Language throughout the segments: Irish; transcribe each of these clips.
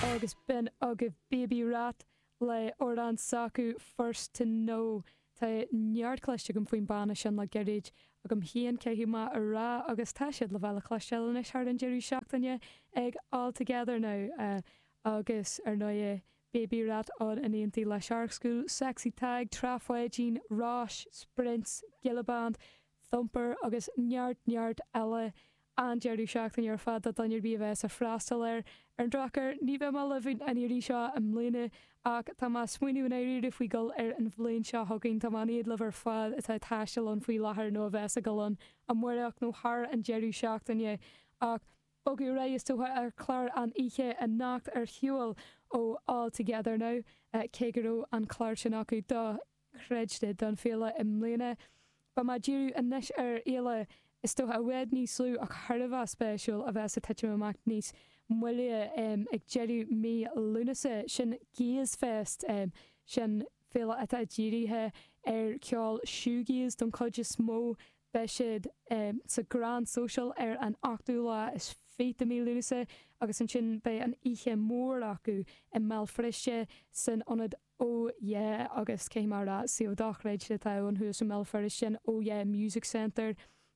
Agus b'in agaibh Baby Rat le amhrán s'acu, First To Know. Tá neart cloiste agam faoin banna sin le gairid, agam féin caithfidh mé a rá, agus tá siad le bheith le cloisteáil anois thar an deireadh seachtaine ag All Together Now. Agus ar ndóighe, Baby Rat ann in éindí le Shark School, Sexy Tadhg, Trá Pháidín, Róis, Sprints, Gilla Band, Thumper agus neart, neart eile. an deireadh seachtaine ar fad do dhuine ar bith a bheas ag freastal air. Ar an drochuair, ní bheidh mé libh an iarraidh seo i mbliana, ach tá mé ag smaoineamh i ndáiríre faoi dhul ar an bhliain seo chugainn. Tá mé in éad libh ar fad atá ag taisteal ann faoi láthair nó a bheas ag dul ann amáireach nó thar an deireadh seachtaine, ach bogadh ar aghaidh is dócha ar chlár an oíche anocht ar shiúl ó All Together Now, cé go raibh an clár sin acu do. chreidte don Féile i mbliana. Beidh mé ag díriú anois ar Fhéile is dócha i bhfad níos lú ach thar a bheith spéisiúil a bheas ag titim amach níos moille ag deireadh mí Lúnasa. Sin Gaze Fest, sin féile atá dírithe ar ceol shoegaze don chuid is mó. Beidh siad sa Grand Social ar an 8ú lá is fiche de mhí Lúnasa agus ansin beidh an oíche mór acu i mBéal Feirste san Ionad oh yeah agus caithfidh mé a rá suíomh dochreidte atá ann thuas i mBéal Feirste an oh yeah music centre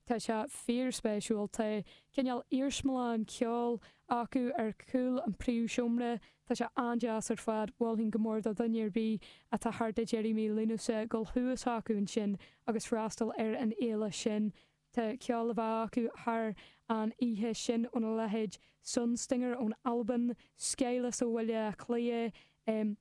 tá sé fíor spéisiúil tá cineál iarsmalann ceoil acu ar chúl an príomhsheomra tá sé an-deas ar fad mholfainn go mór do dhuine ar bith atá thart ag deireadh mí Lúnasa dul thuas acu ansin agus freastal ar an fhéile sin Tá ceol le bheith acu thar an oíche sin óna leithéid Sunstinger ón Albain, Skyless ó Bhaile Átha Cliath,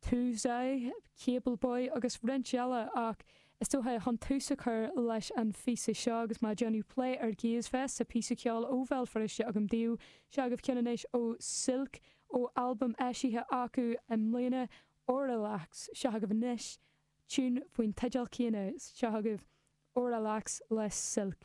Touzai, Cable Boy agus roinnt eile ach is dócha chun tús a chur leis an phíosa seo agus mé ag déanamh plé ar Gaze Fest tá píosa ceoil ó Bhéal Feirste agam daoibh, seo agaibh ceann anois ó Silk ó albam eisithe acu i mbliana, Auralux. Seo agaibh anois Tune faoin teideal céanna seo agaibh, Auralux le Silk.